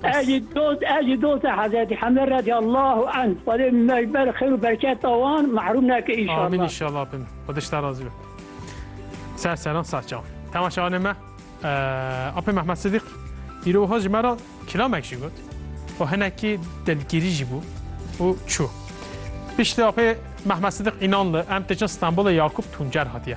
Ecî dost ecî dost Hezretî Hemle redî Allahu en Xwedê mejber xir û berketa wan mahrum neke înşallah. Amin înşallah bin. Xwedê ji te razî be. Ser seran ser çav. Temaşevanê me Apê Mehmet Sidîq îro wiha ji me re kilamek jî got û hinekî dilgîrî jî bû û çû. Piştî apê Mehmet Sidîq înan li em têçin Stenbolê Yakûb Tuncer hatiye.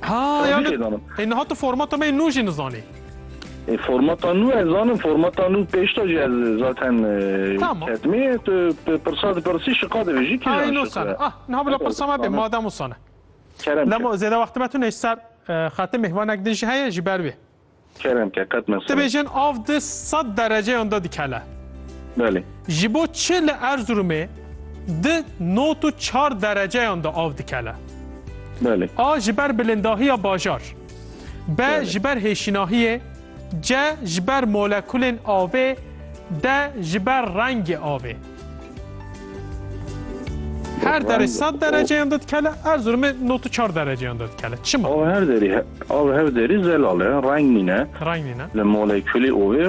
Ha yani e niha tu formata me nû jî nizanî. E formata nû ez zanim formata nû pêşta jî ez zaten ketmê tu pirsa dipirsî şiqa divê jî kîjan şiqa. Ay nû sana. Ah niha bila pirsa me bê madem û sana. Lemo zêde wextime tu nêj ser xatim mehvanek din ji heye ji ber wê. Kerem ke qet mesele. Dibêjin av di sed dereceyan de dikele. Belê. Ji bo çi li Erzurumê di not û çar dereceyan de av dikele. Belê. A ji ber bilindahiya bajar. B ji ber hêşinahiyê. C ji ber molekulên avê. D ji ber rengê avê. Her derê sed dereceyan de dikele, Erzurumê nod û çar dereceyan de dikele. Çima? Av her derî, av her derî zelal e, reng nîne. Reng nîne. Li molekulî ovê